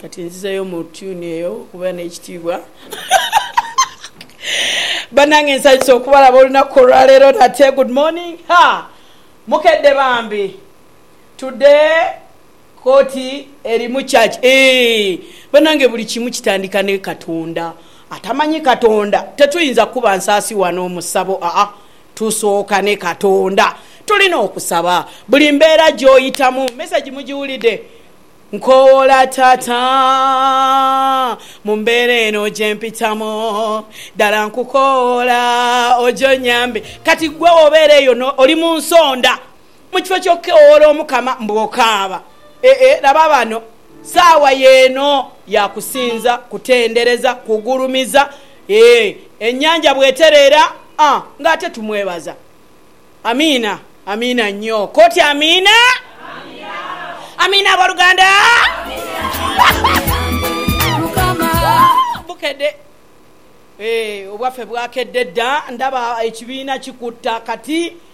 Kati nzizeyo mu tune eyo okubeera n'ekitiibwa. Banange nsanyuse okubalaba olunaku olwaleero nate. Good morning ha mukedde bambi today koti eri mu church eeh banange buli kimu kitandika ne katonda atamanyi katonda tetuyinza kukuba nsaasi wano mu ssabo aah. Tusooka ne Katonda. Tulina okusaba. Buli mbeera gy'oyitamu. Mesegi mugiwulidde? Nkowoola Taata, mu mbeera eno gye mpitamu, ddala nkukowoola oje onyambe. Kati ggwe obeera eyo, oli mu nsonda. Mu kifo ky'okukeowoola Omukama mbu okaaba, ee, laba bano, saawa y'eno ya kusinza, kutendereza, kugulumiza, ee, ennyanja bw'etereera, a, nga ate tumwebaza. Amiina. Amiina nnyo. Koti amiina. Amiina, aboluganda. Bukedde. Ee, obwaffe bwakedde dda. Ndaba ekibiina kikuta kati.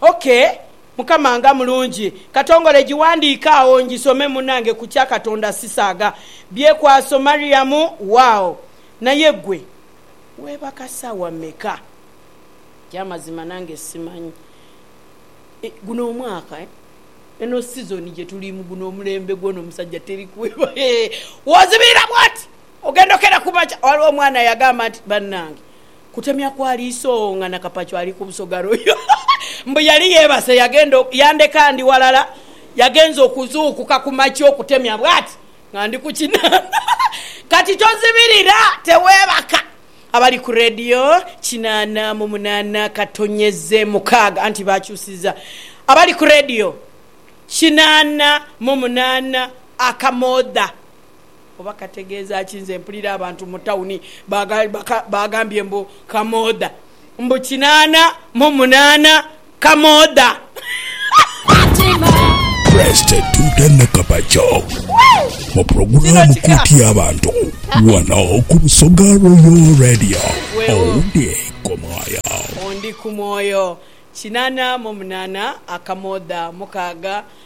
OK mukama nga mulungi. Katongole giwandiike agho ngisome munange kukya katonda sisaaga byekwaso mariam waawo naye gwe webaka saawa meka ekyamazima nange simanyi eh guno omwaka eh eno season gyetulimu guno omulembe gwona omusajja teri kweba hee wozibira bwoti ogenda okera kumakya waliwo omwana yagamba nti banange Kutemya kwa liiso oo nga Nakapacu ali ku busoga royo. Mbu yali yeebase yagenda o, yandeka ndi walala, yagenze okuzuukuka ku makya okutemya bwati nga ndi ku kinaana. Kati tozibirira, teweebaka. Abali ku leediyo, kinaana mu munaana katonyeze mukaaga, anti baakyusizza. Abali ku leediyo, kinaana mu munaana akamoodha. Oba kategeeza ki? Nze mpulira abantu mu tawuni baagambye mbu kamoodha. Mbu kinaana mu munaana kamoodha. Presty Tuta Nakabakya mu pulogulaamu Kooti y'Abantu wano ku Busoga Royal Radio. Owundi ku mwoyo. Ondi ku mwoyo. Kinaana mu munaana akamoodha. Mukaaga.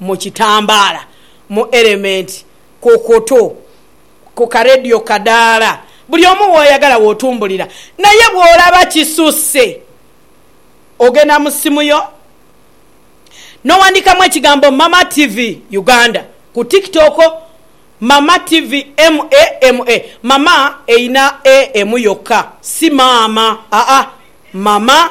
mu kitambaala, mu erementi, ku kutu, ku karedio kadaala, buli omu w'oyagala w'otumbulira. Naye bw'olaba kisusse, ogenda mu ssimu yo n'owandiikamu ekigambo Mama TV Uganda ku TikTok, Mama TV MA MA, Mama erina A emu yokka, si maama, aa, Mama.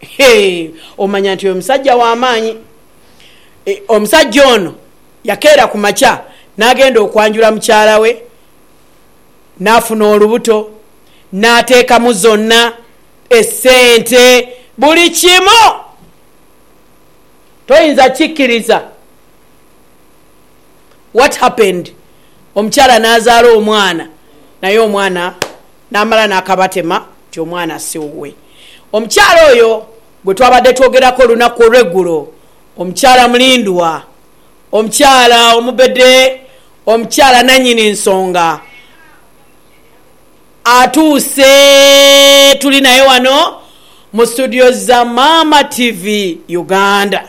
Hee! Omanya nti oyo musajja wa maanyi. Omusajja ono yakeera ku makya n'agenda okwanjula mukyala we, n'afuna olubuto, n'ateekamu zonna essente, buli kimu. Toyinza kukikkiriza. What happened? Omukyala n'azaala omwana, naye omwana. N'amala n'akabatema nti omwana si wuwe. Omukyala oyo gwe twabadde twogerako olunaku olw'eggulo, omukyala mulindwa, omukyala omubede, omukyala nannyini nsonga, atuuse. Tuli naye wano mu situdiyo za Maama TV Uganda.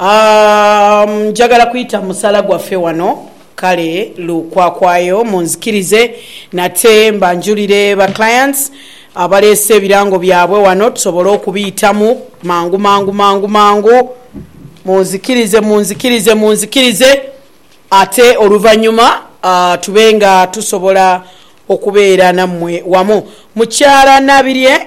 Umm njagala kwita musala gwaffe wano kale lukwakwayo munzikirize nate mbanjulire ba clients abaleese ebirango byabwe wano tusobole okubiitamu mangu mangu mangu mangu munzikirize munzikirize munzikirize ate oluvanyuma tube nga tusobola okubeera nammwe wamu. Mukyala Nabirye.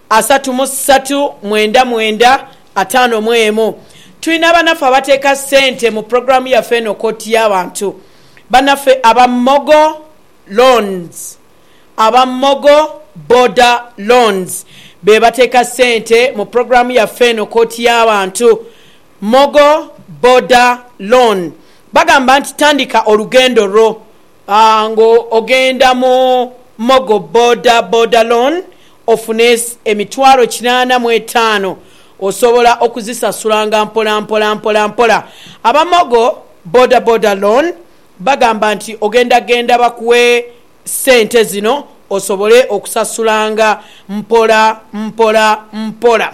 Asatu mu satu mwenda mwenda ataano mu emu. Tulina banaffe abateeka sente mu pulogulaamu yaffe eno Kkooti y'Abantu. Banaffe aba Mogo Loans, aba Mogo Boda Loans be bateeka sente mu pulogulaamu yaffe eno Kkooti y'Abantu. Mogo Boda Loan bagamba nti tandika olugendo lwo Nga ogenda mu Mogo Boda Boda Loan ofuna emitwalo kinaana mu etaano osobola okuzisasulanga mpola mpola mpola mpola. Aba Mogo Boda Boda Loan bagamba nti ogenda genda bakuwe sente zino osobole okusasulanga mpola mpola mpola.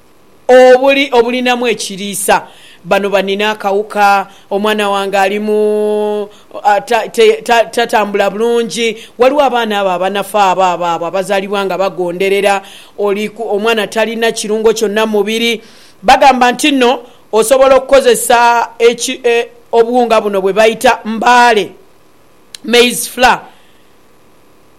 obuli obulinamu ekiriisa. Bano banina akawuka, omwana wange ali mu tatambula bulungi. Waliwo abaana abo abanafa abo abo abo abazalibwa nga bagonderera oli omwana talina kirungo kyonna mu mubiri. Bagamba nti no osobola okukozesa obuwunga buno bwebaita mbaale, maize flour.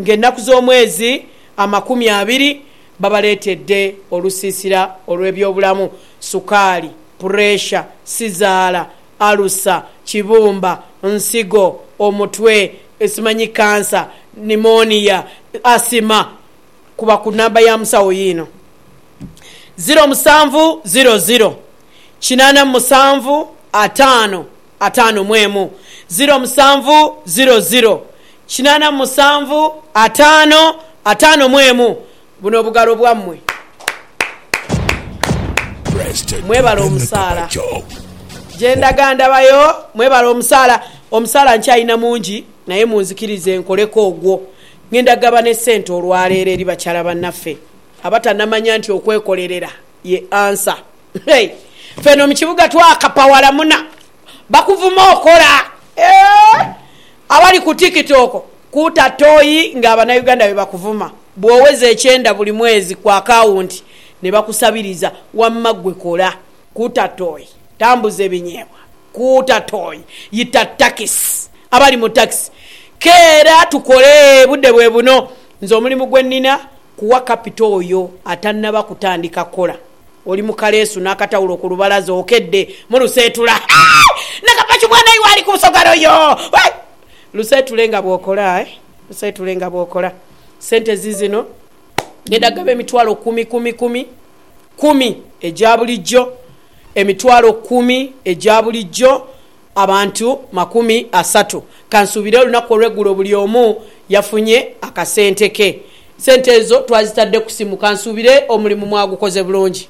ng'enaku z'omwezi amakumi abiri babaleetedde olusiisira olw'ebyobulamu, sukaali, pureesha, sizaala, alusa, kibumba, nsigo, omutwe, simanyi kkansa, pneumonia, asima kuba ku namba ya musawo yiino, ziro musanvu ziro ziro, kinaana mu musanvu ataano. ataano mu emu, ziro musanvu, ziro ziro, kinaana mu musanvu, ataano, ataano mu emu. Buno bugalo bwammwe. Mwebale omusaala. Gye ndaga ndabayo. Mwebale omusaala. Omusaala nkyalina mungi naye munzikirize nkoleko ogwo. Ngenda kugaba n'essente olwaleero eri bakyala bannaffe abatanamanya nti okwekolerera ye ansa. Hey fe eno mukibuga twakapa walamuna bakuvuma okola eeh abali ku tiktok kuta toyi nga abanauganda bebakuvuma bwoweza ekyenda buli mwezi ku akawunti nebakusabiriza wamma gwe kola kuta toyi tambuza ebinyebwa kuta toyi yita takisi abali mu takisi keera tukole budde bwebuno nze omulimu gwenina kuwa kapito oyo atanaba kutandika kola. Oli mu kaleesu n'akatawulo ku lubalaza okedde mu luseetula. Hee! Nakapaki mwana iwe ali ku nsogalo yo! Hee! Luseetule nga bw'okola eh! Luseetule nga bw'okola. Ssente ziizino. Ng'enda kugaba emitwalo kkumi kumi kumi kkumi egya bulijjo. Emitwalo kkumi egya bulijjo. abantu makumi asatu. Kansuubire olunaku olw'eggulo buli omu yafunye akasente ke. Sente ezo twazitadde ku simu. Kansuubire omulimu mwagukoze bulungi.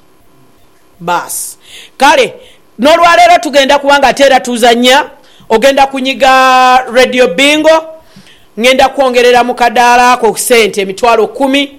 Baasi. Kale, n'olwaleero tugenda kuba nga ate era tuzannya. Ogenda kunyiga Radio Bingo. Ngenda kwongerera mu kadaala ako sente emitwalo kumi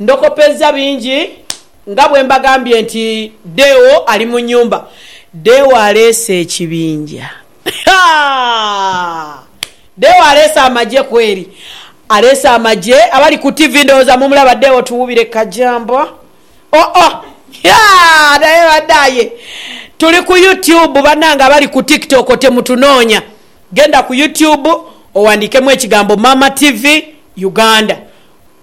Ndokopezza bingi nga bwe mbagambye nti Deo ali mu nnyumba. Deo aleese ekibinja. Haa! Deo aleese amagye kweri. Aleese amagye. Abali ku ttivi ndowooza mumulaba Deo Tuwubire Kajamba. Oh oh! Haa! Naye bannaye! Tuli ku YouTube bannange abali ku TikTok temutunoonya. Genda ku YouTube owandiikemu ekigambo Maama TV Uganda.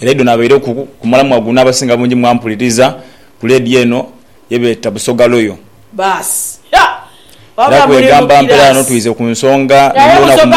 Era idho nabaireku ku mulamwa guno abasinga bungi mwampuliriza ku leediyo eno ye beeta Busoga Royal. Era kwegamba mpera ghano twize ku nsonga n'olunaku muno.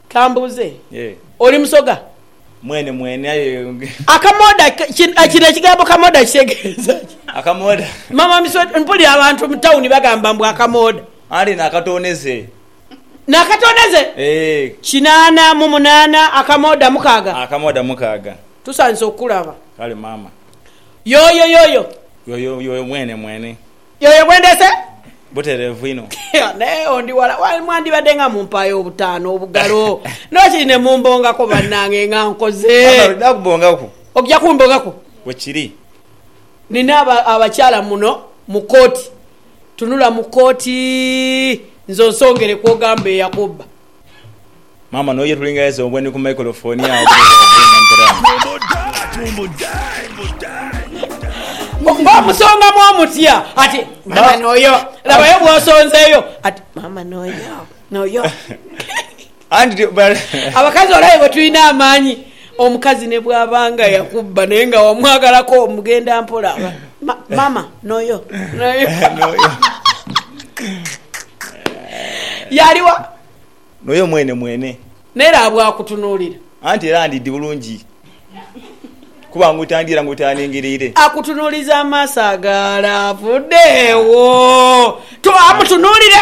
Ka mbuuze, oli Musoga? Mwene mwene aye. Akamooda, kino ekigambo kamooda kitegeeza ki? Akamooda. Maama Miswedha, mpulira abantu mu tawuni bagamba mbu akamooda. Anti n'akatooneze. N'akatooneze? Eeh. Kinaana mu munaana, akamooda mukaaga. Akamooda mukaaga. Tusandise okukulaba. Kale maama. Yooyo, yooyo. Yooyo, yooyo mwene mwene. Yoyo gwe ndeese? Butereevu inho. Naye agho ndi wala ghale, mwandibadde nga mumpaayo obutaano obugalo n'okiri ne mumbongako bannange nga nkoze. Maama alina kubongaku. Okugya kumbongaku? Bwe kiri. Nnina abakyala muno mu kkooti. Tunula mu kkooti nze onsongere kw'ogamba eyakubba. Maama noyo yetulingainza obwe ni ku microphone agho bwire bwa Venga mperaano. Nga omusongamu omutya ati Maama noyo labayo bwosonzeyo ati Maama noyo noyo. Anti abakazi olabe bwetulina amaanyi. Omukazi ne bwaba nga yakubba naye nga wamwagalako mugenda mpola mama noyo yaliwa noyo mwene mwene naye laba bwakutunulira anti era ndidhi bulungi kuba ngutandira ngutaningirire. Akutunuliza amaaso agalaavu, dheewo amutunulire.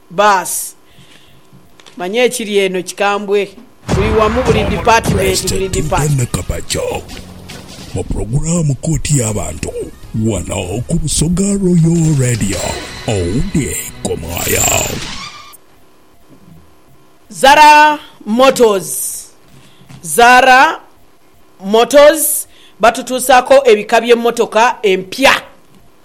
Baasi. Manya ekiri eno kikambwe. Buli wamu, buli dipatimenti, buli dipart. Omulongo Pulezidenti Donna Kabaja mu pulogulaamu Kooti y'Abantu wano ku Busoga Royal Radio. Owundi Komwaaya. Zara Motors Zara Motors batutuusaako ebika by'emmotoka empya.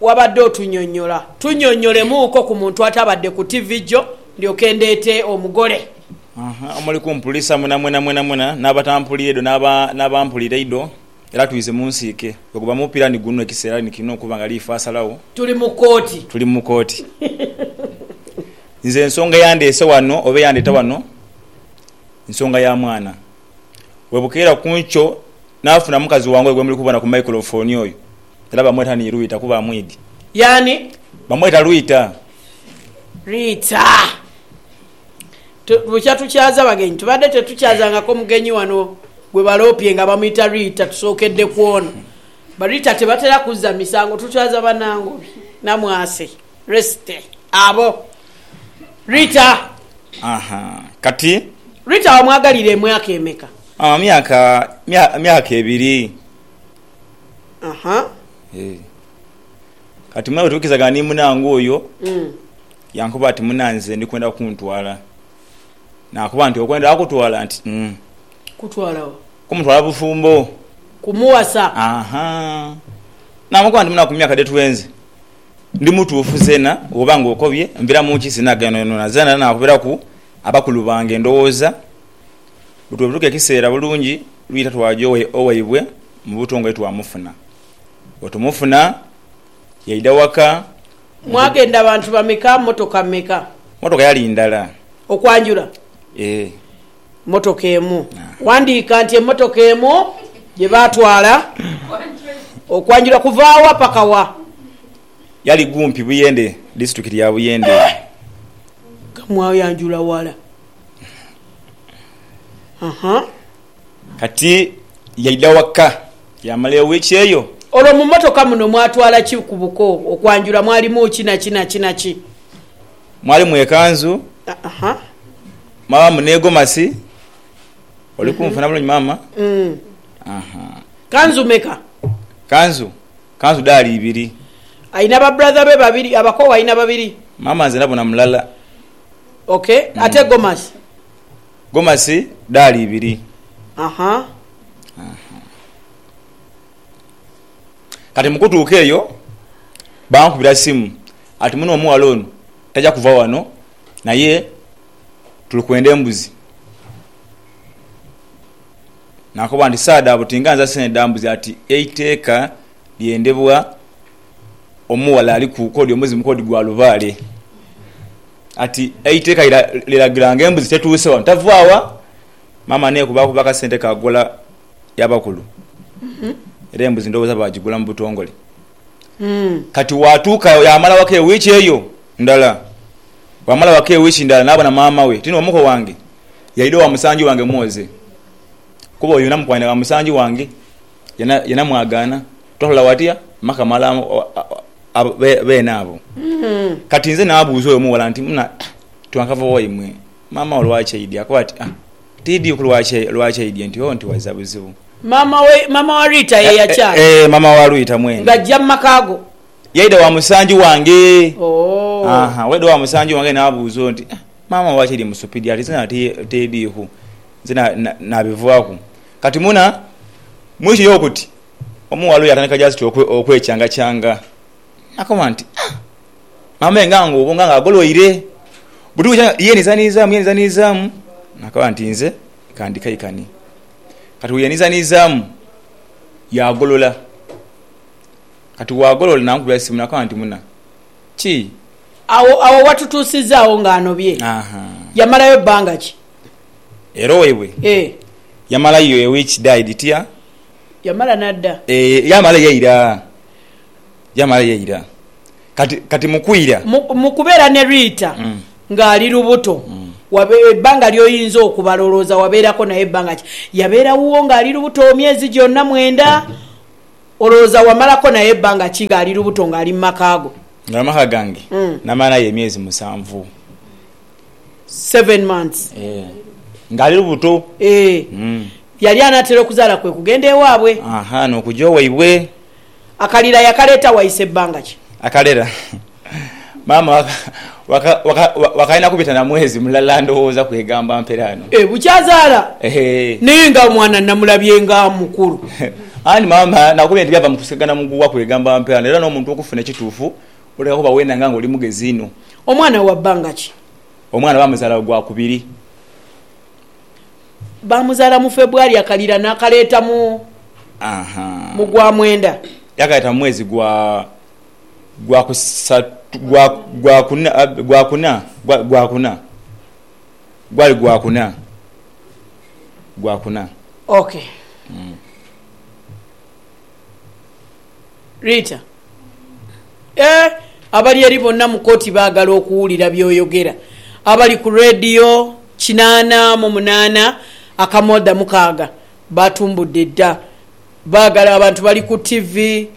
Wabadde otunyonyola, tunyonyolemuuko ku muntu atabadde ku tivi jo ndyoke ndeete omugole. Omuli kumpulisa mwena mwena mwena mwena n'abatampulira idho n'abampulira idho, era twize mu nsiike. Gwe guba mupira ni guno, ekiseera ni kino okuba nga liifa asalagho. Tuli mu kooti. Tuli mu kooti. Nze ensonga eyandeese wano oba eyandeeta wano nsonga ya mwana. Bwebukeera ku nkyo naafuna mukazi wange oyo gwe muli kubona ku maikulofoni oyo, era bamweta ni Rwita kuba amwidhi. Yaani? Bamweta Rwita. Rwita. Tu, bukya tukyaza bagenyi. Tubadde tetukyazangako mugenyi wano gwe baloopye nga bamwita Rwita, tusookedde ku ono. Ba Rwita tebatera kuzza misango, tukyaza banange oyo Namwase. Resty, Abo. Rita, Aha. Kati. Rita, Wamwagalira emyaka emeka? Aha, myaka, mya, myaka ebiri. Aha. Eeh. Kati muna bwetuwikirizaga ni munange oyo, Mm. yankoba ati, Muna, nze ndi kwenda kuntwala. Nakoba nti, Okwenda kutwala? Nti, Mm. Kutwala wa? Kumutwala bufumbo. Kumuwasa. Aha. Namukoba nti, Muna, ku myaka dhe twenze. Ndi mutuufu zeena, bw'oba ng'okobye, nvira mu nki sinaageenhonhona. Zeena naakubiraku abakulu bange endowooza, bwetulibutuka ekiseera bulungi lwita twaja owaibwe mu butongole twamufuna. Bwetumufuna, yaidha waka mu. Mwagenda bantu bameka? Mmotoka meka? Mmotoka yali ndala. Okwanjula? Ee. mmotoka emu. Wandiika nti emmotoka emu gye baatwala okwanjula kuva wa paka wa? Yali kumpi Buyende, disitulikiti ya Buyende. Kamwayanjula wala. Aha. Kati yaidha waka yaamala ewiiki eyo. Olwo mu mmotoka muno mwatwala ki ku buko okwanjula? Mwalimu ki na ki na ki na ki? Mwalimu ekanzu mwabamu ne gomasi. Oli kunfuna bulungi maama? Kanzu meka? Kanzu, kanzu daali ibiri. Alina ba brother be babiri, abakoowu alina babiri. Maama nze nabona mulala. Ok, ate gomasi? Gomasi daali ibiri. Kati mu kutuuka eyo bankubira simu ati muno omughala ono taja kuva wano naye tuli kwenda embuzi. Nakoba nti saadha abo tinga nza sente dha mbuzi ati eiteeka lyendebwa omughala aliku kodi omuzimu kodi gwa lubaale. Ati eiteeka liragira nga embuzi tetuuse wano tava wa? Maama nekubakuba akasente ka ghola. y'abakulu era embuzi ndhowooza baagigula mu butongole. Kati waatuuka yaamala waka ewiiki eyo ndala. Bwamala waka ewiiki ndala naabona maama we tino omuko wange yaidha owa musangi wange mwoze kuba oyo namukwanira wa musangi wange ye namwagaana twatoola watya maka mala beene abo. Kati nze naabuuza oyo omuwala nti, Muna twankava waimwe? Maama wo lwaki aidye? Akoba ati, Ah, tiidye ku lwaki, lwaki aidye nti, Oh, nti wazza buzibu. Maama we, maama wa Rita ye yachanga. Eh, eh, eh, maama wa Rita mwene. Nga ajja mu maka go. Yaidha wa musanju wange. Oh. Aha, bw'aidha wa musanju wange n'abuuza oti, Ah, maama wo lwaki aidye mu supidi? Ati, Nze nati tiidye ku. Nze na, na, naabivaaku. Kati muna, muli kiri okuti, omughala oyo yatandika just okwe, okwechangachaanga. Akoba nti, Ah! Amenga nga obonga nga agoloire. Buti bwija nga yeenhizanhizaamu, yeenhizanhizaamu, naakaba nti nze ka ndikaikane. Kati bweyeenhizanhizaamu, yaagolola. Kati bwagolola nankubira simu naakaba nti muna, ki? Agho agho watutuusizaagho ng'anobye. Ahaa. Yamalayo bbanga ki? Era owaibwe? Ee. Yamalayo a week, died, tya? Yamala n'adda. Ee, yaamala yaira. Yamala yaira. Kati, kati mu kwira. Mu, mu kubeera ne Rita nga ali lubuto, wabe, ebbanga ly'oyinza okubala olowooza wabeerako naye bbanga ki? Yabeera wuwo nga ali lubuto emyezi gyonna mwenda? Olowooza wamalako naye bbanga ki nga ali lubuto nga ali mu maka go? Nga ali mu maka gange? Namala naye emyezi musanvu. Seven months. Eeh. Nga ali lubuto. Eeh. Yali anaatera okuzaala kwe kugenda ewaabwe. Aha, n'okuja owaibwe. Akalira yakaleeta waise bbanga ki? Akalira maama wakalina kubita na mwezi mulala ndowooza kwegamba mpere ano. E bukyazaala naye nga omwana namulabye nga mukulu. Anti maama nakubye nti byava mu kusikagana muguwa kwegamba mpere ano era n'omuntu okufuna ekituufu olina kuba wenanga nga oli mugezi inho. Omwana wa bbanga ki? Omwana baamuzaala gwa kubiri. Baamuzaala mu Febwari, yakalira naakaleeta mu mu gwa mwenda. Yaakaleeta mu mwezi gwa gwa kusatu gwa gwa kuna gwa kuna gwa kuna gwali gwa kuna gwa kuna. Ok. Rita. Eeh abali eri bonna mu kooti baagala okuwulira by'oyogera. Abali ku leediyo kinaana mu munaana akamooda mukaaga baatumbudde dda. Baagala abantu bali ku ttivi,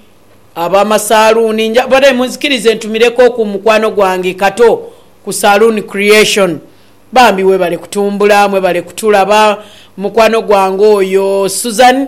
ab'amasaaluuni. Nja kubadhayo munzikirize ntumirekooku mukwano gwange Kato ku Saloon Creation. Bambi webale kutumbula, mwebale kutulaba. Mukwano gwange oyo Suzan.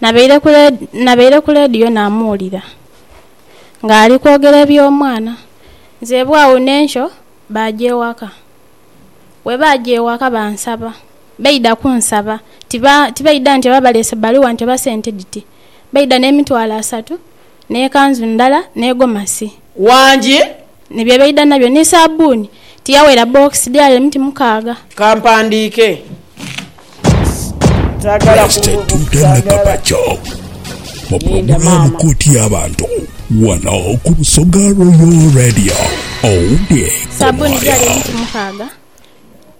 Nabaire ku leediyo namuwulira ng'ali kwogera eby'omwana. Nzeebwa agho n'enkyo baaja ewaka. Bwe baaja ewaka bansaba, baidha kunsaba, tibaidha nti oba baleese bbaluwa nti oba sente dhiti, baidha n'emitwalo asatu. n'ekanzu ndala, ni gomasi. Wangi. Ni bye baidha nabyo, ni saabbuuni. Tiyaweera bbookisi dh'e Alemu ti mukaaga? Ka mpandiike. Saagala kububuusa. Pulogulaamu Kooti y'Abantu wano ku Busoga Royal Radio. Owundi kuwaaya.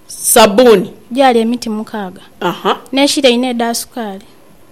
Saabbuuni gyali emiti mukaaga n'eshira inha edha sukaali.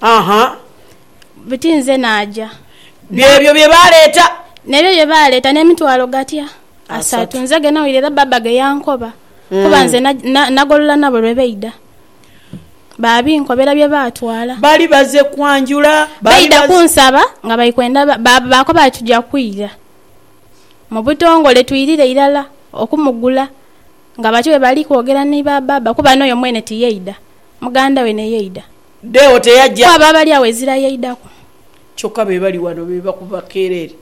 Aha. Buti nze naaja. Byebyo bye baaleeta. N'ebyo bye baaleeta n'emitwalo gatya? Asatu. Nze ge nawulira era Bbaabba ge yankoba, kuba nze na, nagolola nabo lwe baidha. Baabinkobera bye baatwala. Baali baze kwanjula. Baali baidha kunsaba nga bali kwenda, ba, baakoba bati, Tuja kwira mu butongole twirire irala okumugula. Nga batyo bwe bali kwogera ni ba baaba, kuba n'oyo mwene tiyaidha, muganda we ne yaidha. Deo teyaja. Kwabo abali agho ezira yaidhaku. Kyokka be bali wano be bakuba keerere.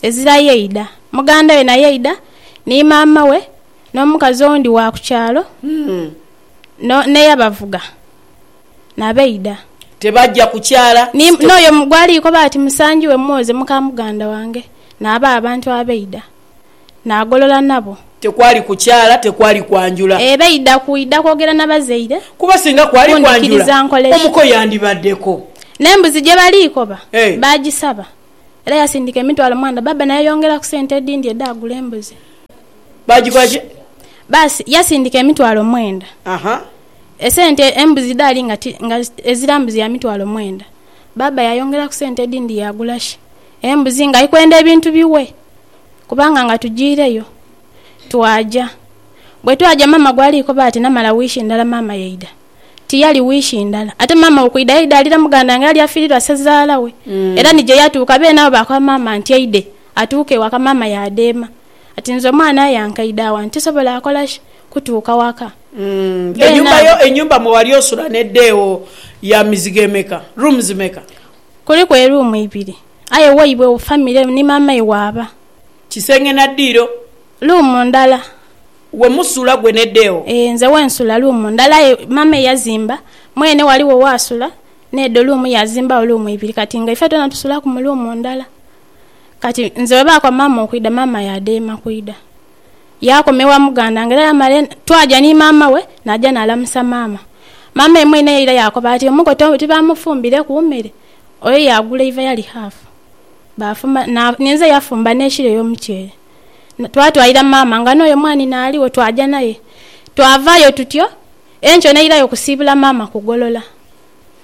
Ezira yaidha. Muganda we naye yaidha, ni maama we, n'omukazi owundi wa ku kyalo, no, n'eyabavuga, na baidha. Tebaja kukyala. Ni, n'oyo gw'ali koba ati musangi we mwoze, muka muganda wange, n'abo abantu abaidha. naagolola nabo. Tekwali kukyala, tekwali kwanjula. Ee, baidha kwidha kwogera na bazaire. Kuba singa kwali kwanjula, omuko yandibaddeko. N'embuzi gye bali koba baagisaba. Era yasindika emitwalo mwandha. Bbaabba n'ayeyongeraku sente edhindi edhaagula embuzi. Baagikola ki? Baasi, yasindika emitwalo mwenda. Aha. Esente embuzi dhaali nga ti, nga ezira mbuzi ya mitwalo mwenda. Bbaabba yaayongeraku sente edhindi yaagula shi? Embuzi, ng'ali kwenda ebintu biwe. kubanga nga tujiireyo twaja. Bwe twaja maama gwali koba ati namala wiiki ndala maama yaidha. Tiyali wiiki ndala. Ate maama okwidha yaidha alira muganda nga eyali afiirirwa sezaala we. Era ni gye yatuuka beene abo baakoba maama nti aidhe atuuke ewaka maama yaadheema ati nze omwana aye ankaidha wano tisobola akola ki kutuuka waka. Beene abo. Enyumba mwe wali osula n'edha ewo ya mizigo emeka, rooms meka? Kuliku eruumu ibiri. Aye waibwe wo family ni maama iwe aba. Kisenge na diiro. Room ndala. We musula gwe ne deo. Eeh nze wensula room ndala aye maama eyazimba mwene waliwo wasula nedo room yazimbagho room ibiri kati nga ife twena tusulaku mu room ndala kati nze webakwa maama okwida maama yadema kwida yakoma ewa muganda wange era yamala twaja ni maama we naja nalamusa maama. Maama ye mwene era yakoba ati omugo tibamufumbireku mere Oyo yaagula eiva yali haafu, baafumba na, ninze yafumba n'ekilo ey'omuceere. Twatwalira maama nga n'oyo mwanhi naaligho, twaja naye. Twavaayo tutyo, enkyo nairayo kusiibula maama ku golola.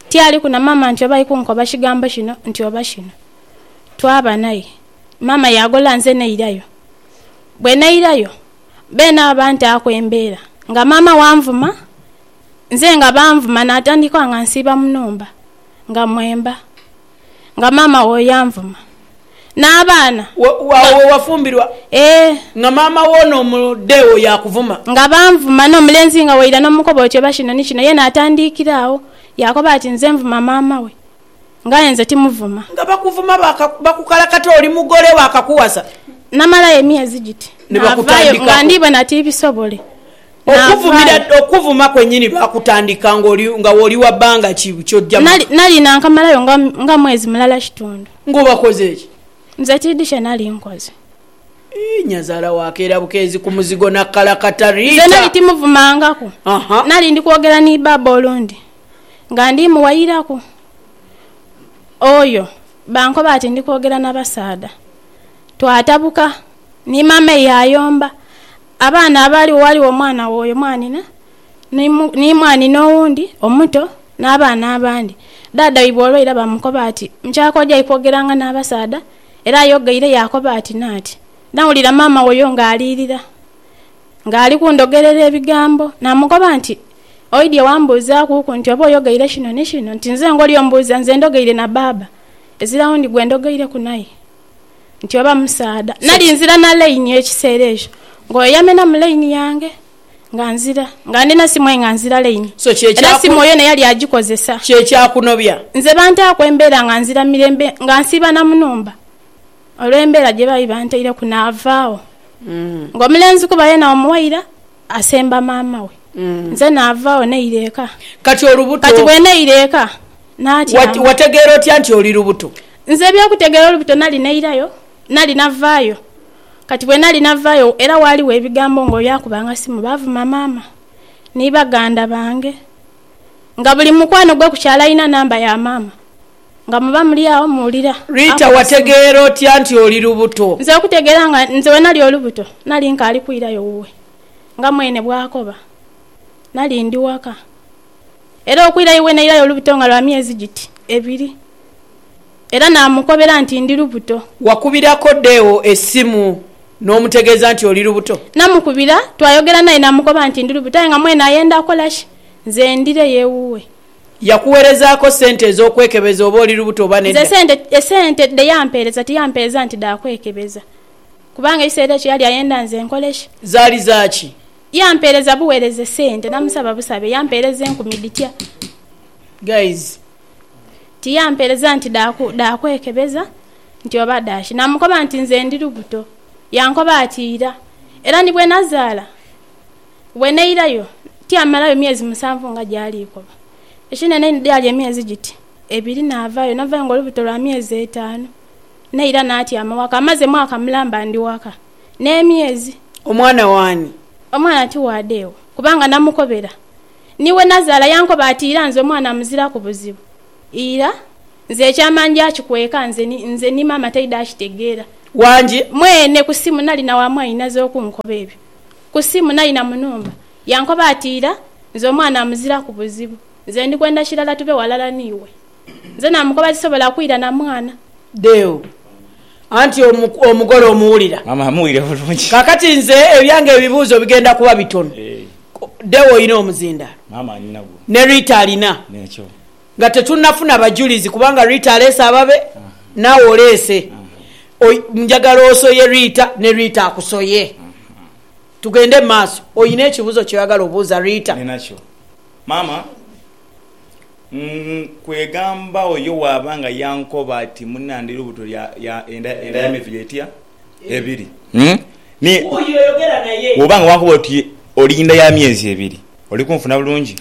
Tialiku na maama nti oba ali kunkoba kigambo kino nti oba kino. Twaba naye. Maama yaagolola nze nairayo. Bwe nairayo, beene abo bantaaku embeera nga maama wanvuma, nze nga banvuma naatandika nga nsiiba mu nhumba. nga mwemba, nga maama wo yanvuma, n'abaana Wa, wa, nga, wa, wafumbirwa ee, nga maama wo n'omude wo yaakuvuma. nga banvuma, n'omulenzi nga waira n'omukoba oti, Oba kino ni kino? Ye n'atandiikira agho, yaakoba ati, Nze nvuma maama we, nga aye nze timuvuma. Nga bakuvuma baaka, bakukalakata oli mugole we akakuwasa. Namalayo emyezi giti, Ni n'avaayo, nga bakutandikaku. ndiibona tibisobole. Okuvumira, okuvuma kwenyini lwa kutandika ng'oli, nga w'oli wa bbanga ki ky'ojja mu. Nali, nali nankamalayo nga, nga mwezi mulala kitundu. Ng'obakoze ki? Nze tidhi kye nali nkoze. Ii, nyazaala wa keera bukeezi ku muzigo n'akkalakata. Rita. Nze nali timuvumangaku. Aha. Nali ndi kwogera ni Baaba olundi, nga ndi muwayiraku oyo, bankoba ati ndi kwogera na basaadha. Twatabuka, ni Maama eyo ayomba, Abaana abaaliwo, ghaligho omwana w'oyo mwanhina, ni mwanhina owundi omuto, n'abaana abandi. Dhaadha waibwe olwo ira baamukoba ati, Mukyala k'ojai kwogeranga n'abasaadha? Era ayogeire yaakoba ati, Naati. Nawulira maama w'oyo ng'alirira, ng'ali kundogerera ebigambo. Naamukoba nti, Oidhie wambuuzaakuku nti oba oyogeire kino ni kino? Nti nze ngoli ombuuza, nze ndogeire na baaba, ezira wundi gwe ndogeireku naye. nti oba musaadha. Nali nzira na Lane ekiseera ekyo nga oyo yamenamu Lane yange nga nzira nga ndina simu aye nga nzira Lane So kye era simu kyaku. yona yali agikozesa. Kye kyakunobya. Nze bantaaku embeera nga nzira mirembe nga nsiiba na mu nhumba olw'embeera gye baali bantaireku naava agho nga omulenzi kuba yena omuwaira asemba maama we. Nze naava agho naira eka. Kati olubuto. Kati bwe naira eka, natyama. Wategeera otya nti oli lubuto? Nze eby'okutegeera olubuto nali nairayo, nali navaayo. Kati bwe nali navaayo era waaliwo ebigambo ng'oyo akubanga simu baavuma maama ni baganda bange. Nga buli mukwano gwe ku kyalo alina namba ya maama. nga muba muli agho muwulira. Rita, Wategeera otya nti oli lubuto? Nze okutegeera nga nze bwe nali olubuto nali nkaali kwirayo wuwe nga mwene bw'akoba. Nali ndi waka. Era okwira iwe nairayo olubuto nga lwa myezi giti ebiri. Era naamukobera nti ndi lubuto. Wakubirako Deo esimu n'omutegeeza nti oli lubuto? Namukubira, twayogera naye namukoba nti ndi lubuto aye nga mwene ayenda kola ki nze ndireyo ewuwe. Yakuwerezaako sente ez'okwekebeza oba oli lubuto oba Nze nedda? esente esente dhe yampeereza tiyampeereza nti dha kwekebeza kubanga ekiseera ekyo yali ayenda nze nkole ki? Zaali za ki? Yampeereza buweereze sente namusaba busabe yampeereza enkumi dhitya? Guys. Tiyampeereza nti dha dha kwekebeza nti oba dha ki? Namukoba nti nze ndi lubuto. Yankoba ati ira era ni bwe nazaala. Bwe nairayo, tyamalayo myezi musanvu nga gyali ikoba. Ekinene inho gyali emyezi giti ebiri naavaayo. Navaayo ng'olubuto lwa myezi etaanu. Naira naatyama waka. Amaze mwaka mulamba ndi waka n'emyezi. Omwana w'ani? Omwana ti wa deewe kubanga namukobera. Ni we nazaala yankoba ati ira nze omwana muziraku buzibu. Ira nze ekyama nja kikweka nze ni nze ni maama taidha akitegeera. Wangi? Mwene ku simu nali na wa mwainaze okunkoba ebyo. Ku simu naina mu nhumba yankoba ati ira nze omwana amuziraku buzibu nze ndi kwenda kirala tube walala niiwe. Nze namukoba sisobola kwira na mwana. Deo, Anti omugole omuwulira? Maama amuwulira bulungi. Kaakati nze ebyange ebibuuzo bigenda kuba bitono. Deo, Olina omuzindaalo? Maama, Ninagwo. Ne Rita alina? N'ekyo. Nga tetunnafuna bajulizi kubanga Rita aleese ababe, naawe oleese. Oi, njagala osoye Rita, ne Rita akusoye. Tugende mu maaso. Olina ekibuuzo ky'oyagala obuuza Rita? Ninakyo, maama. Ng, kwegamba oyo bw'aba nga yankoba ati, Munnandhi, lubuto lya, lya, enda, enda y'emiviri etya? ebiri mm ni bwoba nga wankoba oti oli inda ya myezi ebiri oli kunfuna bulungi?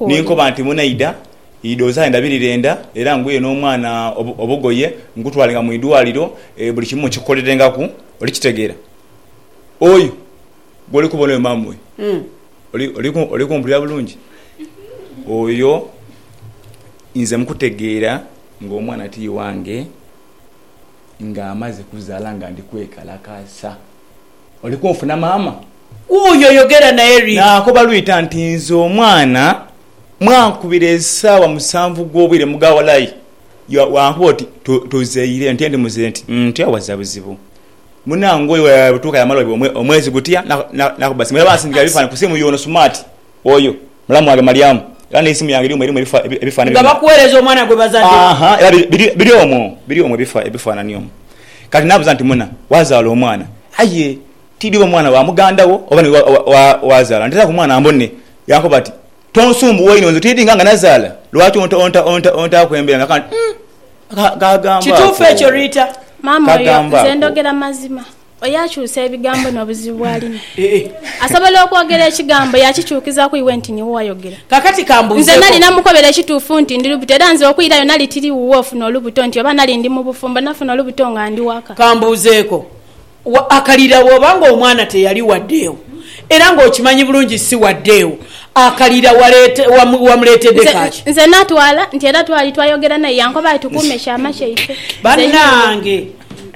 Ninkoba nti munaidha idho zaale ndabirire enda era nguye n'omwana obugoye nkutwalenga mu idwaliro buli kimu nkikukolerengaku oli kitegeera? Oyo gwoli kubona oyo mama oyo oli kumpulira bulungi? Oyo nze mukutegeera ng'omwana ti wange. nga amaze kuzala nga ndi kwekalakasa oli kunfuna mama wuyo yogera naye ri. Nakoba lwita nti nze omwana mwankubira esawa musanvu gwobwire muga walai ya wankuba oti to tozaire nti ndi muze nti ntya waza buzibu munange oyo webutuka yamala omwezi gutya na na nakuba simu era bansindikira ebifananhi kusimu yono smart oyo. Mulamu wange Malyamu, era n'eisimu yange ly'omu erimu ebifaanani byona. Nga bakuweereza omwana gwe bazadde. Aha, era biri omwo, biri omwo ebifaanani omwo. Kati n'abuuza nti, Muna, waazaala omwana? Aye tiidhi oba mwana wa muganda wo oba niwe waazaala. Nteeraku omwana mbone. Yankoba ati, Tonsumbuwa inho, nze tiidhi nga nga nazaala. Lwaki ontaaku embeera? Nakaba nti, Umm, kagamba ako! Kituufu ekyo, Rita? Maama oyo, nze ndhogera mazima. Oyo akyusa ebigambo n'obuzibu bw'alina. Asobola okwogera ekigambo yaakikyukizaaku iwe nti niwe wayogera. Kaakati ka mbuuzeeko. Nze nali namukobera ekituufu nti ndi lubuto era nze okwirayo nali tiri wuwe ofuna olubuto nti oba nali ndi mu bufumbo nafuna olubuto nga ndi waka. Ka mbuuzeeko, akalira bw'oba ng'omwana teyali wa ddeewo era ng'okimanyi bulungi si wa ddeewo, akalira wamuleetedde ka ki? Nze natwala nti era twali twayogera naye yankoba ati tukuume kyama kyaife. Bannange!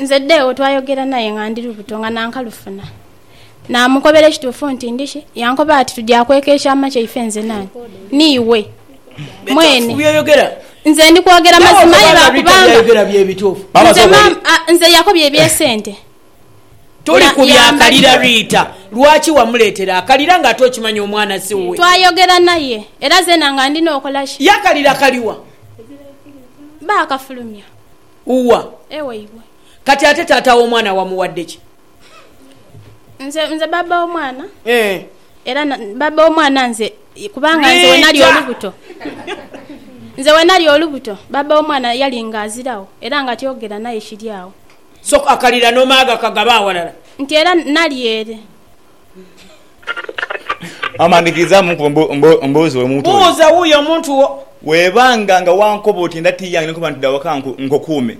Nze Deo twayogera naye nga ndi lubuto nga nankalufuna. Namukobera ekituufu nti ndi ki, yankoba ati tuja kweka ekyama kyaife nze nawe. Niiwe. Mwene. Nze ndi kwogera mazima aye lwa kubanga. Nze maama, a, nze yakobya eby'esente. Toli ku bya kalira Rita. Lwaki wamuleetera akalira nga ate okimanyi omwana si wuwe? Twayogera naye era zeena nga ndina okola ki? Ye akalira kali wa? Baakafulumya. Uwa. Ewaibwe. Kati ate taata w'omwana wamuwadde ki? Nze, nze baaba w'omwana. Eeh. Era na, baaba w'omwana nze, kubanga nze we nali olubuto. Nze we nali olubuto, baaba w'omwana yali nga aziragho, era nga tyogera naye kiri agho. So, akalira n'omaaga kagaba awalala. Nti era nali ere, Maama ndhikiriza mu nkuba mbuuze oyo muntu oyo. Buuza wuuyo omuntu wo. Bwebanga nga wankoba oti nda ti yange ni nkoba nti dha waka nkukuume,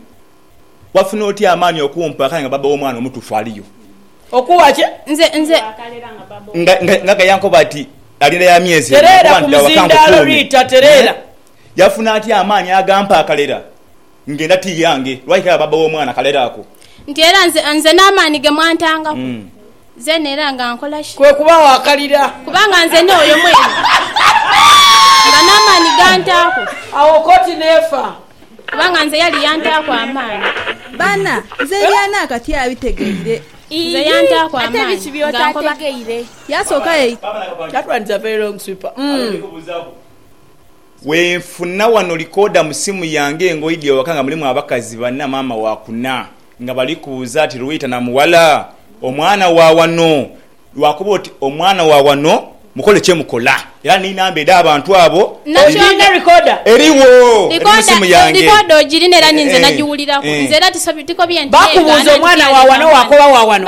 wafuna otya amaani okumpa akale nga bbaabba w'omwana omutuufu aliyo? Okuwa ki? Nze, nze. Nga, nga, nga yankoba ati alinda ya myezi ena ni nkoba nti dha waka nkukuume. Tereera, Rita, tereera. Yafuna atya amaani agampa akalera? Ngenda ti yange, lwaki kale baba w'omwana kalere ako? Nti era nze, nze n'amaani ge mwantangaku, zeena era nga nkola ki? Kwe kubagho akalira. Kubanga nze ni oyo mwene, nga n'amaani gantaaku. Agho koti n'efa. Kubanga nze yali yantaaku amaani. Baana, nze eby'ani akati abitegeire. Nze yantaaku amaani nga nkoba. Yasooka yaita. That one is a very long sweeper. Wenfuna wano likoda mu simu yange engoye dhi waka nga mulimu abakazi bana maama wa kuna nga bali kubuza ati Luwita na muwala omwana wa wano? Lwakuba oti omwana wa wano mukole kye mukola era ni namba edha abantu abo eriwo eri mu simu yange eeh eeh. Bakubuza omwana wa wano wakoba wa wano?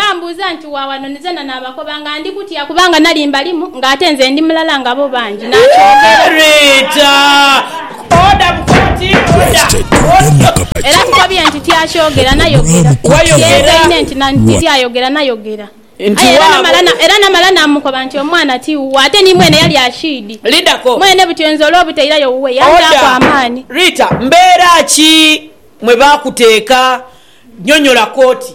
Koba nga ndi kutya kubanga nali mbalimu nga ate nze ndi mulala nga bo bangi, n'akyogera. Era tukobye nti tyakyogera nayogera, kyegaine nti tiryayogera nayogera. Aye era namala namukoba nti omwana ti wuwo ate ni mwene yali akiidi. Mwene butyo nze olw'obutairayo wuwe yanjaaku amaani. Rita, mbeera ki mwe baakuteeka? Nyonyola koti.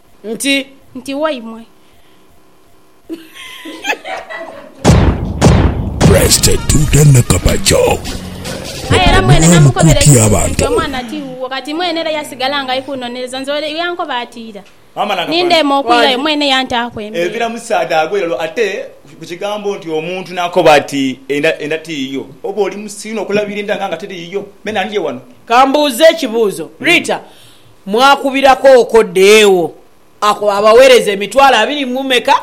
nti. Nti waimwe. Presite Tuta Nakabakyo okwo bulamu koti abantu. Kati mwene era yasigala nga ali kunoneleza nze ole yankoba ati ira nindeema okwirayo mwene yantaaku embeera. Evira musaadha agwe lero ate ku kigambo nti omuntu nakoba ati enda enda tiyiyo oba oli musiru nokulabira enda nga nga teri yiyo. Me nandye wano. Kambuuze ekibuuzo Rita. mwakubiraku okwo deewo ako abawereza emitwalo abiri mu meka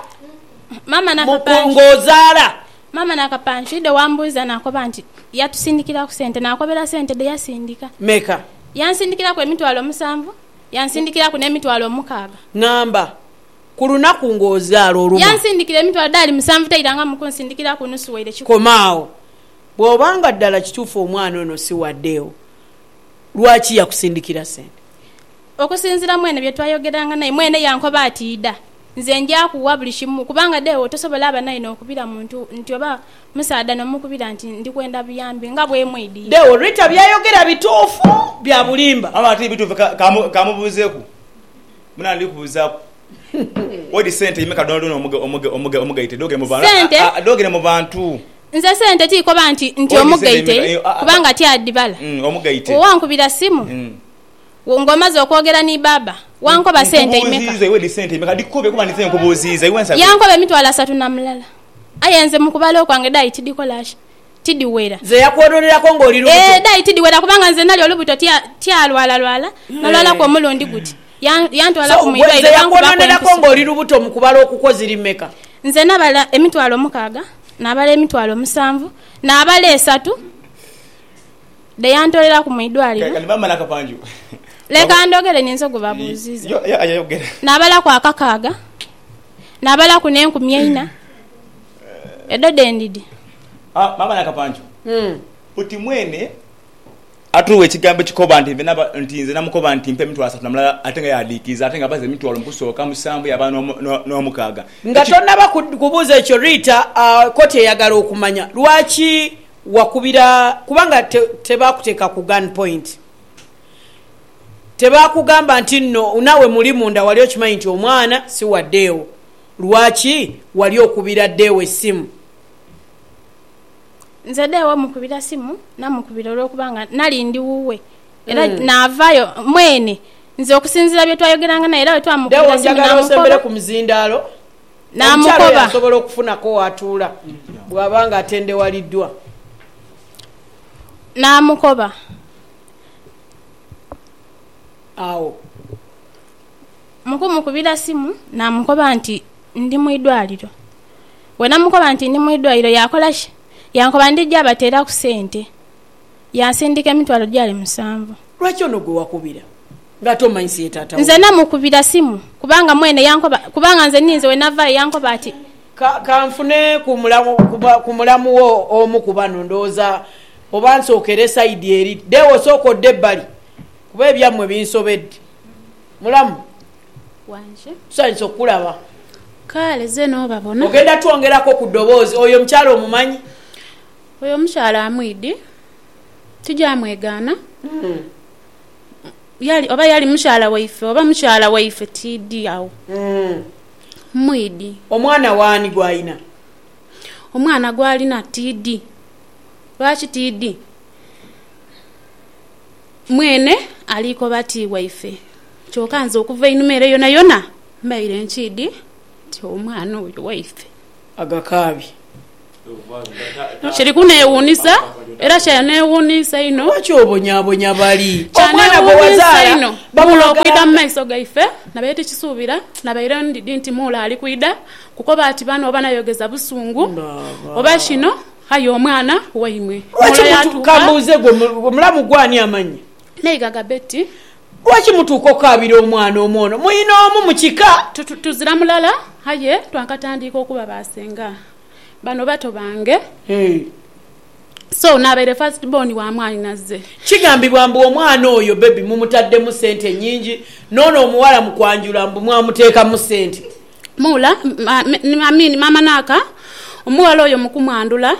nga ozaala. Maama Nakapanchi dhe wambuuza nakoba nti yatusindikiraku sente nakobera sente dhe yasindika. Meka? Yansindikiraku emitwalo musanvu yansindikiraku n'emitwalo omukaaga. Ngamba, Ku lunaku nga ozaala olumu. Yansindikira emitwalo dhaali musanvu tairangamu kunsindikiraku nusu waire kikumi. Koma agho. Bwoba nga ddala kituufu omwana ono si wa deewo. Lwaki yakusindikira sente? Okusinziira mwene bye twayogeranga naye, mwene yankoba ati, Idha, nze nja kugha buli kimu. Kubanga deewo tosobola aba naye n'okubira muntu nti oba musaadha n'omukubira nti ndi kwenda buyambi nga bwemwidhi. Deewo, Rita by'ayogera bituufu bya bulimba? Maama, Tibituufu. Ka, ka, ka mubuuzeeku. Muna, ndikubuuzaaku. Odi sente imeka dhonadhona omugaite dhogere mu bantu? Nze sente tikoba nti omugaite kubanga tyadhibala. Bwe wankubira simu ng'omaze okwogera ni baaba wankoba sente imeka. Yankoba emitwalo asatu na mulala aye nze mu kubala okwange dhaali tidhikola. tidhiwera. Nze yakwononeraku nga oli lubuto. Eeh dai tidhiwera kubanga nze nali olubuto tya tyalwalalwala nalwalaku omulundi guti ya yantwalaku mu irwaire So gwe nze bankubaku yakwononeraku empiso. nga oli lubuto mu kubala okukwo ziri mmeka? Nze nabala emitwalo mukaaga, nabala emitwalo musanvu, nabala esatu dhe yantoleraku mu idwaliro. Kati maama Nakapanju Leka waba ndhogere ninze ogubabuuziiza. Yo, yo, aye yogera. Nabalaku akakaaga, nabalaku n'enkumi eina. Edho dhe ndidi. Haa maama Nakapancu buti mwene atuwa ekigambo ekikoba nti nve naba nti nze namukoba nti mpa emitwalo asatu na mulala ate nga yadiikiiza ate nga abaza emitwalo mu kusooka musanvu yaba n'omu n'o n'omukaaga Nga eki tonnaba ku kubuuza ekyo Rita, kkooti eyagala okumanya lwaki wakubira kubanga te tebaakuteeka ku gun point. Tebaakugamba nti nno naawe muli munda wali okimanyi nti omwana si wa ddeewo. Lwaki wali okubira Deo esimu? Nze Deo mukubira simu namukubira olw'okuba nga nali ndi wuwe era naavayo mwene. Nze okusinziira bye twayogeranga naye era bwe twamukubira simu namukoba. Deo njagala osembere ku muzindaalo omukyala oyo asobole okufunako w'atuula bw'aba nga atendewaliddwa. Namukoba. Awo. mu kumukubira simu naamukoba nti ndi mu idwaliro. Bwe namukoba nti ndi mu idwaliro yaakola ki? Yankoba ndija bateeraku sente. Yansindika emitwalo gyali musanvu. Lwaki ono gwe wakubira ng'ate omanyi si ye taata wo? Nze namukubira simu kubanga mwene yankoba kubanga nze ninze we navaayo yankoba ati. Ka, ka nfune ku mulamu, ku mulamu wo omu ku bano. Ndowooza oba nsookere sayidi eri. Deo, sooka odde ebbali kuba ebyammwe binsobedde. Mulamu. Wanje. Tusanyuse okukulaba. Kaale, ze n'obabona. Ogenda twongerako ku ddoboozi. Oyo omukyala omumanyi? Oyo omukyala amwidi. Tija mwegaana. Yali, oba yali mukyala waife, oba mukyala waife, tiidi agho. Mmwidi. Omwana w'ani gw'alina? Omwana gw'alina tiidi. Lwaki tiidi? Mwene aliikoba ti waife, kyoka nze okuva einhuma ere yonayona mbaire nkiidhi nti omwana oyo waife. Agakaabye. Kiri kuneewuunisa, era kyaneewuunisa inho. Lwaki obonyaabonya bali? Omwana gwe wazaala bamulaga ata? Kyaneewuunisa inho. Muula okwidha mu maiso gaife, nabaire tikisuubira. Nabaire ndidhi nti Muula ali kwidha kukoba ati bano oba nayogeza busungu oba kino. Aye omwana waimwe. Lwaki mutuuka. Mbuuze gwe mulamu gwo ani amanya. N'eighagha Betty. Lwaki mutuuka okukaabira omwana omu ono? Mwine omu mu kika. Tuzira mulala aye twakatandiika okuba ba senga. Bano bato bange. So n'abaire first born wa mwanyinaze. Kigambibwa mbu omwana oyo baby mumutaddemu sente nyingi, n'ono omuwala mu kwanjula mbu mwamuteekamu sente. Muula, I mean maama Naaka, omughala oyo mu kumwandhula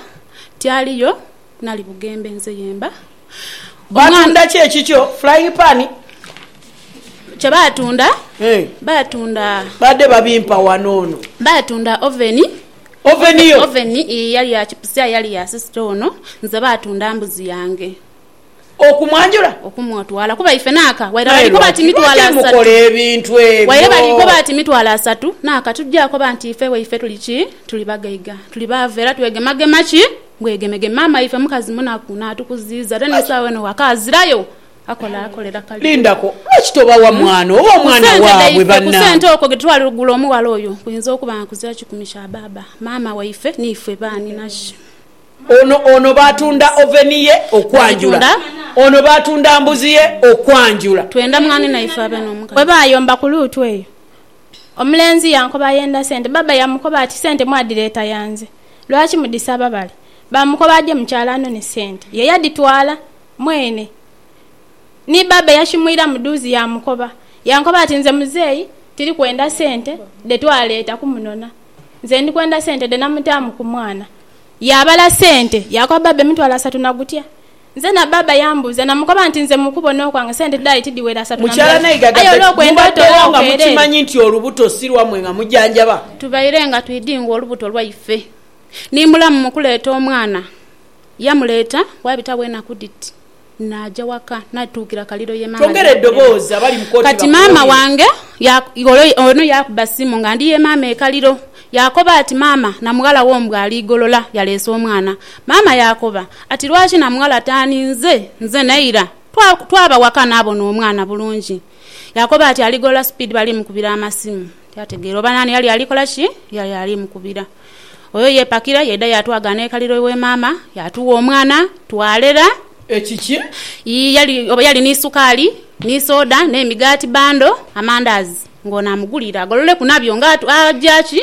ti aliyo nali bugembe nze yemba omwana. Baatunda ki ekikyo? Flying pan? Kye baatunda, baatunda. Baadde babimpa wano ono. Baatunda oveni. Oveni yo? Oveni, ii, yali ya chipusi aye yali ya sisita ono. Nze baatunda mbuzi yange. okumwanjula? Okumutwala, kuba ife n'aka waire balikoba ati mitwalo asatu. Waire balikoba ati mitwalo asatu n'aka, tuja koba nti ife waife tuli ki? Tuli bagaiga, tuli baavu era twegemagema ki? Bwegemegeme. Maama waife mukazi munaku, naatukuziiza ate n'esawa eno waka azirayo, akola akolera kalibu. Ku sente okwo ghe twali kugula omughala oyo kuyinza okuba nga kuzira kikumi kya baaba maama waife n'ife baanhi na ki? Ono, ono baatunda oveni ye okwanjula. Ono baatunda mbuzi ye okwanjula. Twenda mwanenaife abe n'omukadde. Bwe baayomba ku luutu eyo, omulenzi yankoba ayenda sente. Bbaabba yaamukoba ati, Sente mwadireeta ya nze. Lwaki mudhisaba bale? Baamukoba aje mu kyalo anone sente. Ye yadhitwala mwene. Ni bbaabba yashimwira mu dhuuzi yaamukoba. Yankoba ati, Nze muzeeyi tiri kwenda sente dhe twaleeta kumunona. Nze ndi kwenda sente dhe namutaamu ku mwana. Yaabala sente yaakoba baaba emitwalo asatu na gutya. Nze na baaba yambuuza namukoba nti nze mu kubona okwange sente dhali tidhiwera asatu na Mukyala mulala Naigaga aye Betty, olw'okwenda mubaddewo otola nga okeerere. mukimanyi nti olubuto si lwammwe nga mujanjaba. Tubaire nga twidhi nga olubuto lwaife. Ni mulamu mu kuleeta omwana. Yamuleeta, waabitawo enaku dhiti. Naaja waka naituukira Kaliiro ye maama gye yakolera. Kati maama wange ono yaakuba simu nga ndi ye maama e Kaliiro. Yaakoba ati, Maama, Namughala wo mbu ali Igolola yaleese omwana. Maama yaakoba ati, Lwaki Namughala taaninze? Nze ne Ira twaba waka naabona omwana bulungi. Yaakoba ati aligolola sipiidi bali mukubira amasimu. Tiyategeera oba naani yali ali kola ki, yali ali mukubira. Oyo yeepakira yaidha yaatwagha n'ekaliro iwa maama, yaatuwa omwana twalera. Ekiki? Yii, yali, oba yali ni sukaali, ni soda, n'emigaati bando, amandaazi, ng'ono amuguliire agololeku nabyo nga aja ki?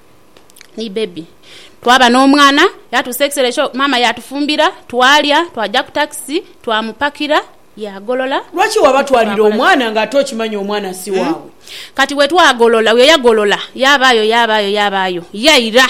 ni bbebi. Twaba n'omwana, yatuusa ekiseera ekyo maama yaatufumbira, twalya, twaja ku takisi twamupakira yaagolola. Lwaki wabatwalira omwana ng'ate okimanyi omwana si waabwe? Kati bwe twagolola, bwe yagolola yaabaayo, yaabaayo, yaabaayo yaira.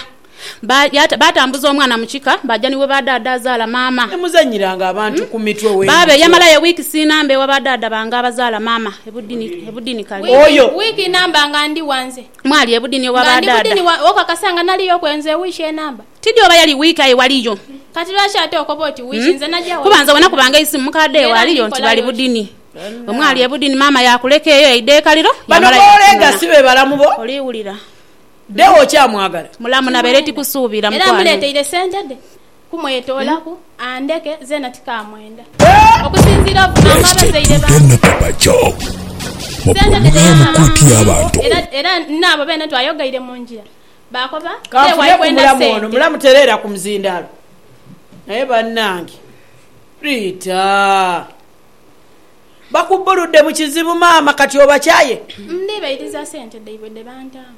Baatambuza omwana mu kika baaja ni wa ba daada azaala maama. Temuzannyiranga abantu ku mitwe bwe mutyo. Baaba eyamalayo wiiki siinamba ewa ba daada bange abazaala maama e Budini, e Budini Kali. Oyo. Wiiki inamba nga ndi ghanze. Mwali ebudini oba ba daada? Nga ndi budini okakasa nga naliyo okwenza ewiiki enamba? Tidhi oba yali wiiki aye waliyo. Kati lwaki ate okoba oti wiiki nze najagho wiiki. Kuba nze wena kubanga eisimu mukadha ewe aliyo nti bali budini. Omwali ebudini maama yakuleka eyo yaidha ekaliro yamala yakunona. Oliwulira. Era muleteire sente dhe. kumwetoolaku andeke zeena tikaamwenda. Okusinziira ku maama abazaire bange, sente tedhayamba mu nsi era n'abo beene twayogeire mu ngira baakoba beewayo kwenda sente. Naye banange Ritah. Bakubbuludde mu kizibu maama kati obakyaye? Ndibairiza sente dhaibwe dhe bantaamu.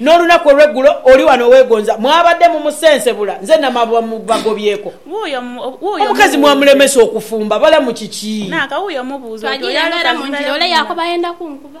N'olunaku olw'eggulo oli wano owegonza, mwabadde mumusensebula, nze namabuba mu bagobyeko. Omukazi mwamulemesa okufumba, balamu kiki? Twajiira embera mu njira, ole yaakoba ayenda kunkuba.